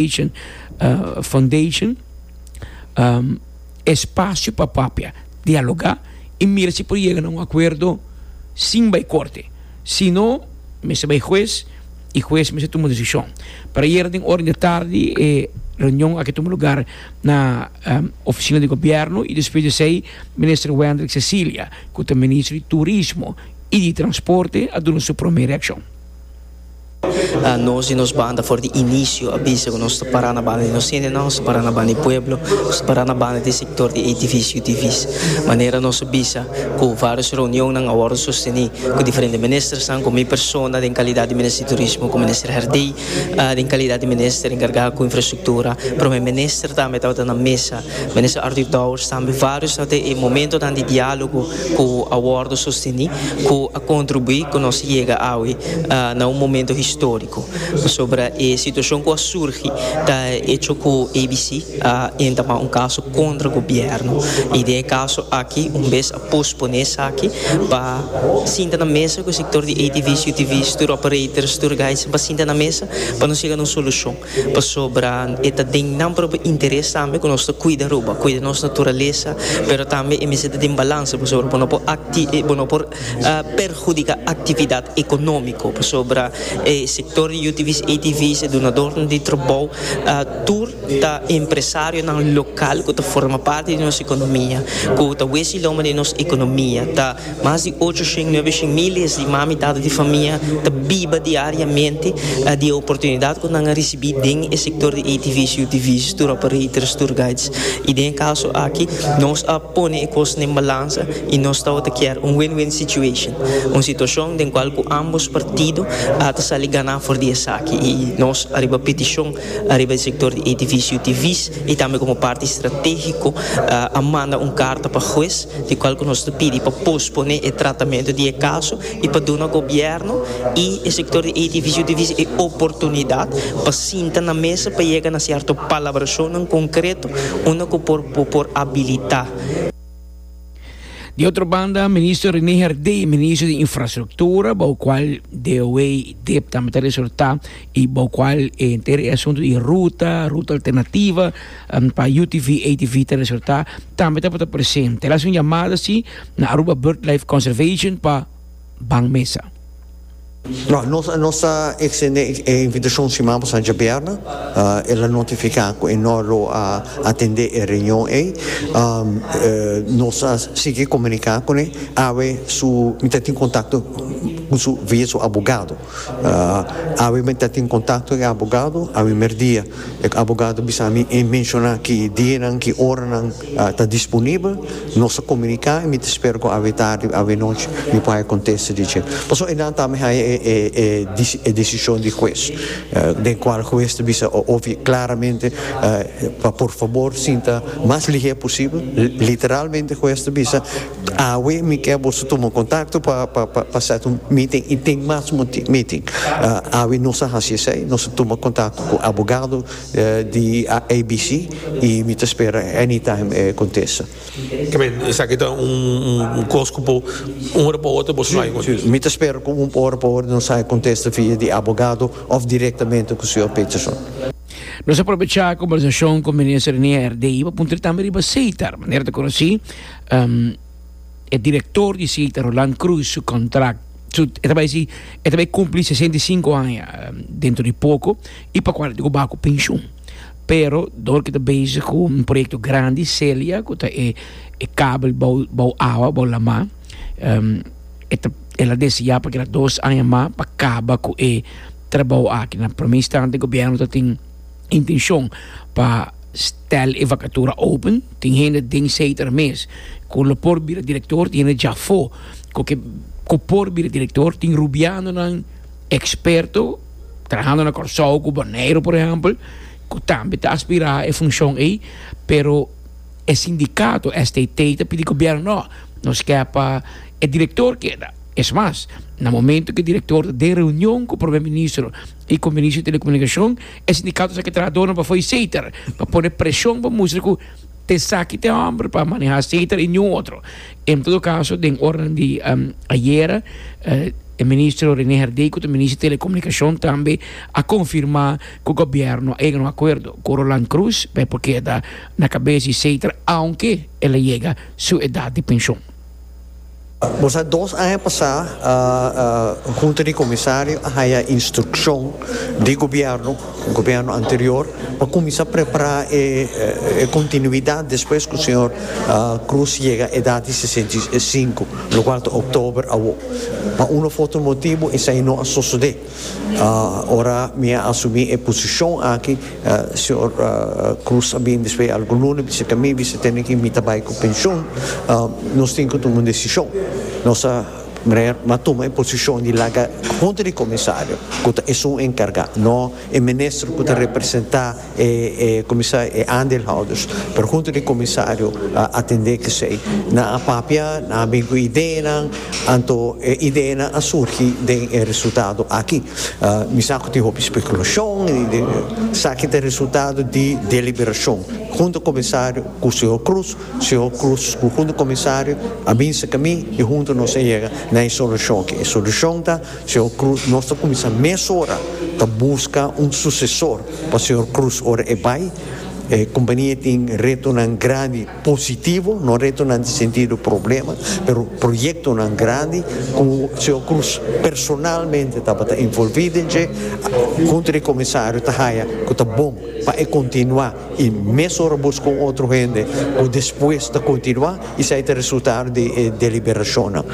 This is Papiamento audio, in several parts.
Education Foundation espacio pa papia, dialoga y mira si por yega na un acuerdo sin bay corte, si no mester bay huez y huez mester tuma decision. Pero ayer den ora di tardi e reunion aki a tuma lugar na oficina di gobierno y despues di esey Minister Wendrick Cecilia cu ta Ministro di Turismo y di Transporte a duna su prome reaccion. Nos di nos banda for di inicio a bisa cu nos ta para na banda di nos hendenan, nos ta para na banda di pueblo, nos ta para na banda di e sector di ATV's, UTV's. Manera nos a bisa cu varios reunionnan a wordo sosteni cu diferente ministersnan, cu mi persona den calidad di Minister di Turismo, cu Minister Herdey den calidad di Minister encarga cu Infrastructura, prome Minister tambe tabata na mesa. Minister Arthur Dowers tambe varios ta den e momentonan di dialogo cu a wordo sosteni cu a contribui cu nos yega awe na un momento historico. Pasobra e situacion cu a surgi ta hecho cu ABC a entama un caso contra gobierno y den e caso aki un bes a pospone esaki pa sinta na mesa cu e sector di ATV's, UTV's, tour operators, tour guides pa sinta na mesa pa nos yega na un solucion. Pasobra e ta den nan propio interes tambe ku nos ta kuida Aruba, kuida nos naturalesa, pero tambe e mester ta den balanse pasobra bo no por akti bo no por perhudika aktividat ekonómiko pasobra e sektor di UTV's, ATV's, e dunadornan di trabou tur ta empresarionan lokal ku ta forma parti di nos ekonomia ku ta wes di loma di nos ekonomia ta. Mas di ocho shen nuebe shen miles di mami tata di famia ta biba diariamente di e oportunidad cu nan a ricibi den e sector di ATV's, UTV's, tour operators, tour guides. Y den e caso aki nos a pone e cos den balanza y nos tawata kier un win-win situation, un situacion den cual cu ambos partido ta sali gana for di esaki. Y nos ariba peticion Ariba e sector di edificio di Vis y tambe como parti estrategico a manda un carta pa huez di cual cu nos ta pidi pa pospone e tratamento di e caso y pa duna gobierno y e sector di edificio di Vis e oportunidad pa sinta na mesa pa yega na cierto palabracionnan concreto unda cu por bo por abilita Di otro banda, Minister René Herdé, Minister di Infrastructura, bou cual Deoway Dip tambe ta resortá y bou cual e henter e asunto di ruta, ruta alternativa pa UTV, ATV ta resortá, tambe ta por ta presente. El haci un llamada así na Aruba Birdlife Conservation pa ban mesa. Nos nos ta extende e invitacion siman pasan djaberna. El a notifica cu e no lo a atende e reunion ey. Nos a sigui comunica cune awe su mi ta tin contacto cu su via su abogado. Awe mi ta tin contacto cu e abogado awe merdia. E abogado bisa mi e menciona ki dianan ki oranan. ta disponibel, nos ta komuniká i mi ta spera ku awe tardi, awe nochi mi por haya kontesta di dje. Pasobra e nan tambe haya e desishon di hues, den kual hues ta bisa klaramente pa por fabor sinta mas lihé posibel, literalmente hues ta bisa awe mi ke boso tuma kontakto pa sèt un meeting i tin mas meeting. Awe nos a hasi esei, nos a tuma kontakto ku abogado. di ABC y mi ta spera anytime e contesta. Amen, esaki ta un cos cu por un ora pa otro boso no hay contesta. Mi ta spera cu un ora pa otro nos hay contesta via di abogado of directamente cu Señor Peterson. Nos a probecha e conversacion cu Minister Renier de ahí pa puntra tambe riba Seitar, manera ta conoci. e direktor di Sita, Roland Croes, su kontrakt, su, e ta bai si, e ta bai kumpli sesenta i sinku aña dentro di poko, i pa kual e ta ku ba ku penshun. Pero dor ke ta bezig ku un proyekto grandi, Celia, ku ta e e kabel bou bou awa, bou lama, e ta el a deseá pa keda dos aña mas pa kaba ku e trabou aki. Na promé instante, gobièrnu ta tin. Intencion pa stel e vacatura open tin hende den Seter mes cu lo por bira director, tin hende dja afo cu ke cu por bira director, tin Rubianonan experto trahando na Corsou cu Bonaire por ehempel cu tambe ta aspira e funcion ey pero e sindicato STT ta pidi gobierno no, nos kier pa e director keda, es mas na momento cu e director ta den reunion cu Prome Ministro E Conferencia Telecomunicacion, e sindicato sa ke trahadornan pa fo'i seter, pa pone presion pa mustra ku esaki ta e homber pa maneha seter i niun otro. En todo caso den oranan di ayera e Ministro Rene Herdey ku ta Minister Telecomunicacion tambe a confirma ku Gobierno a yega na un acuerdo ku Roland Croes pa e por keda na cabeza di seter aunke el a yega su edad di pension. Bo sa dos aña pasá Hunta di Komisario a haya instrukshon di gobièrnu, gobièrnu anterior, pa kuminsá prepará e kontinuidat despues ku señor Cruz yega edat di sesenta i sinku, lokual ta oktober awor. Pa un òf otro motibu esei no a sosodé. Ora mi a asumí e posishon aki, señor Cruz a bini despues di algun luna, bisita mi, bisita tene ki mi ta bai ku penshon, nos tin ku tuma un desishon. Nos a meneer m'a tuma e posishon di laga hunta di komisario, ku ta esun enkargá, no e minister ku ta representá. E e kuminsá e aandeelhouders, pero hunto di e kumisario a atendé kesei. Nan a papia, nan a bini ku ideanan, anto e ideanan a surgi den e resultado aki. Mi sa ku tin hopi spekulashon i den esaki ta e resultado di deliberashon hunto kumisario ku señor Cruz, señor Cruz ku hunto kumisario a binse ku mi i hunto nos a yega na e solushon aki. E solushon ta. Señor Cruz, nos ta cuminsa mesora ta busca un sucesor pa Señor Cruz ora e bay. E compania e tin retonan grandi positivo, no retonan di sentido problema, pero proyectonan grandi cu Señor Cruz personalmente tabata involvi den dje. Junto di e comisario ta haya cu ta bon pa e continua. I mes ora bo busca un otro hende, bo despues ta continua, esai ta resultado di e deliberacionnan.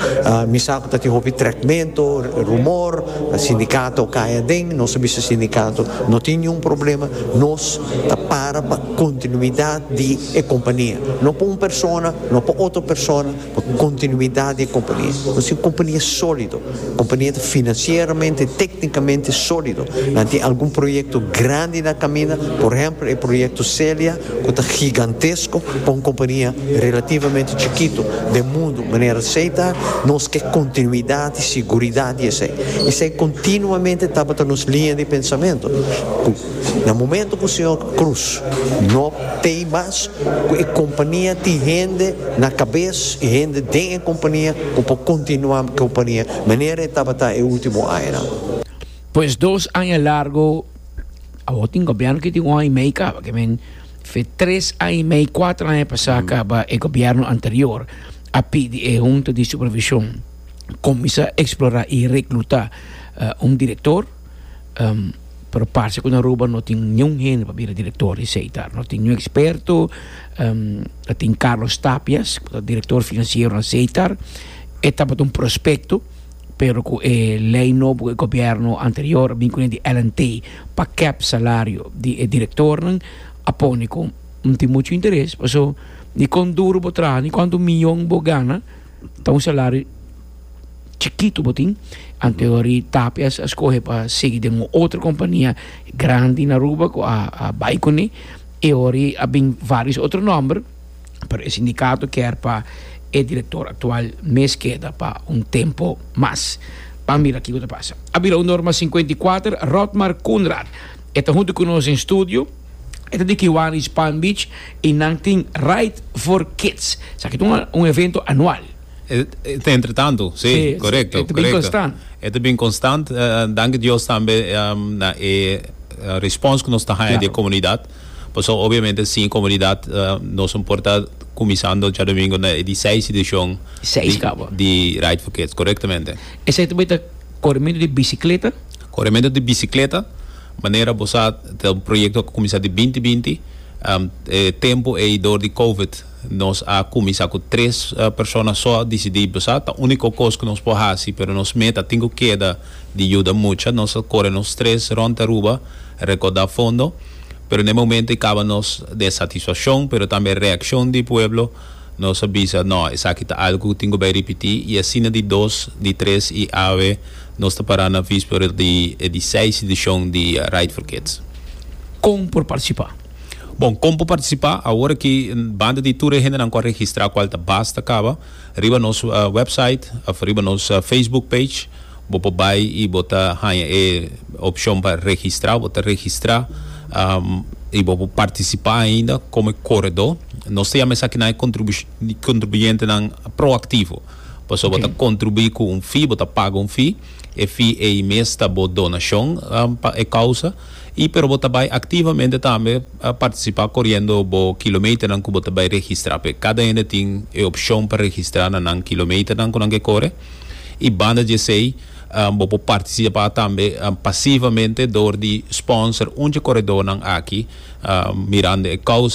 Mi sa cu ta tin hopi trecmento, rumor, sindicato cay aden, nos a bisa sindicato no tin niun problema, nos ta para pa continuidad di e compania, no pa un persona, no pa otro persona. Pa kontinuidat di e kompania. Nos tin un kompania sólido. Un kompania ta finansieramente, téknikamente sólido. Nan tin algun proyekto grandi na kaminda, por ehèmpel e proyekto Celia ku ta gigantesko pa un kompania relativamente chikitu den mundu manera esei ta. Nos ke kontinuidat i siguridat di esei. Esei kontinuamente tabata nos liña di pensamentu. Na momento cu Señor cruz no t'ey mas cu e compania tin hende na cabes y hende den e compania cu por continua e compania manera e tabata e ultimo añanan. Pues dos aña largo, awor tin gobierno ki tin un aña y mey caba, ke men fe tres aña y mey, cuatro aña pasa caba e gobierno anterior a pidi e hunta di supervision cuminsa explora y recluta un director. pero parse ku na Aruba no tin niun hende pa bira direktor di Seitar. No tin niun eksperto, a tin Carlos Tapias ku ta direktor finansiero na Seitar, e tabata un prospekto, pero ku e lei nobo ku e gobièrnu anterior a bin kuné di LNT pa kèp salario di e direktornan a pone ku no tin muchu interes, paso ni kon duru bo traha ni kuantu miyon bo gana, Ta un salario chikito bo tin, anterior di Tapia a skohe pa sigui den un otro kompania grandi na Aruba ku a bai kuné, e ora a bin vários otro nòmber, pero e sindikato kèr pa e direktor aktual mes keda pa un tempu mas. Ban mira kiko ta pasa. A bira un norma sinkuenta i kuater, Rotmar Koenraad. E ta huntu ku nos den studio. E ta di Kiwanis Palm Beach i nan tin Ride for Kids. Sa ki ta un evento anual. E ta entretantu, si, korekto. E ta bin konstant. E ta bin konstant, danki Dios tambe na e respons ku nos ta haña di e komunidat. Pasobra obviamente sin e komunidat nos no por ta kuminsando djadomingo na e diseis edishon di Ride for Kids, korektamente. Esei tambe ta korimentu di bisikleta? Korementu di bisikleta, manera bo sa ta un proyekto ku a kuminsá di binti binti. E tempu ei dor di Covid nos a kuminsá ku tres persona so a disidí, bo sa ta úniko kos ku nos por hasi, pero nos meta tin ku keda di yuda mucha. Nos a kore nos tres rònt Aruba rekordá fondo, pero na e momentu ei kaba nos den satisfakshon, pero tambe e reakshon di pueblo nos a bisa, nò esaki ta algu ku tin ku bai ripití, i asina di dos, di tres i awe. Nos ta para na visper di e di seis edishon di Ride for Kids. Kon por partisipá? Bon, kon por partisipá? Awor aki, banda di tur e hendenan ku a registrá kual ta basta kaba, riba nos wèpsait òf riba nos Facebook page bo por bai i bo ta haña e opshon pa registrá. Bo ta registrá i bo por partisipá ainda komo e koredó. Nos ta yama esakinan e kontribuyentenan proaktivo. Pasobra bo ta kontribuí ku un fee, bo ta paga un fee. E fee ei mes ta bo donashon pa e kousa. I pero bo ta bai aktivamente tambe partisipá koriendo bo kilometernan ku bo ta bai registrá. P'e kada hende tin e opshon pa registrá na nan kilometernan ku nan ke kore. I banda dje esei bo por partisipá tambe pasivamente dor di sponsor un dje koredónan aki mirando e kousa.